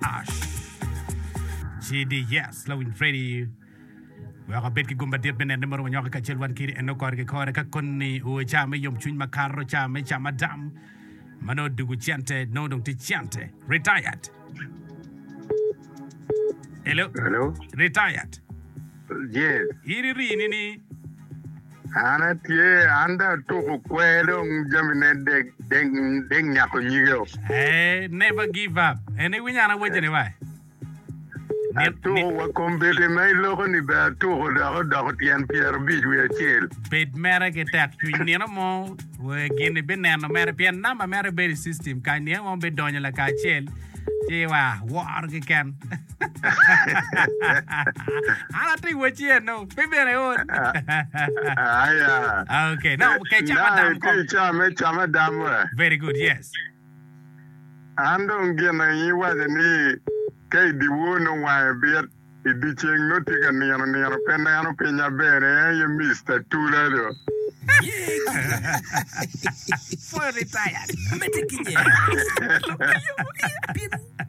Ash. Cidi, Yes, Lawiny Freddy weko abed ki gum madit me neno ni murumo nyoke kacel wan kidi eno kore ki kore ka koni uwe ca me yom cwiny makato ca me ca madam ma nongo dugu cente nongo dong tye cente retired. Hello? Hello? Retired. Yes. In irii ni ni. An atye, an dong atuku kwer dong jami ne dek, dek, dek nyako nyige o. Ee, never give up. En iwinyo an awaco ni wa. Ni, Atuku ni, wa kombeddi ma iloko ni bene atuku dok odoko tyen pyera abic wiye acel. bed mere ki tek cwiny nino mo we gin ibineno mere pien namba mere bedo i system kany nino mo bidonyo lakacel ci wa woro keken. An atye wec yen no. Pe bene ol. Aya. Okay. No, okay, chama Dang dam itye caa me cama dam we. Very good. Yes. An dong gin aye iwaco ni ka i dyewor nongo wange bit, i dyeceng nongo tye ka nino nino pe neno pinya bene en aye Mister Tula do. Fully retired.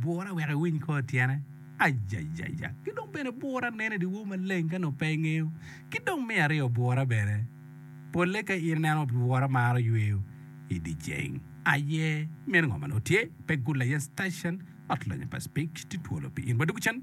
Bura wek iwiny kor tyene. Ajajaja! Ki dong bene bura neno i dyewor maleng ka nongo pe ingeyo. Ki dong me aryo bura bene polle ka in ineno bura maro yweyo i dye ceng aye. Meno ngo ma nongo tye? Pe gul aye station ot lonya pa Speke tye twolo pi in. Wadugu cen.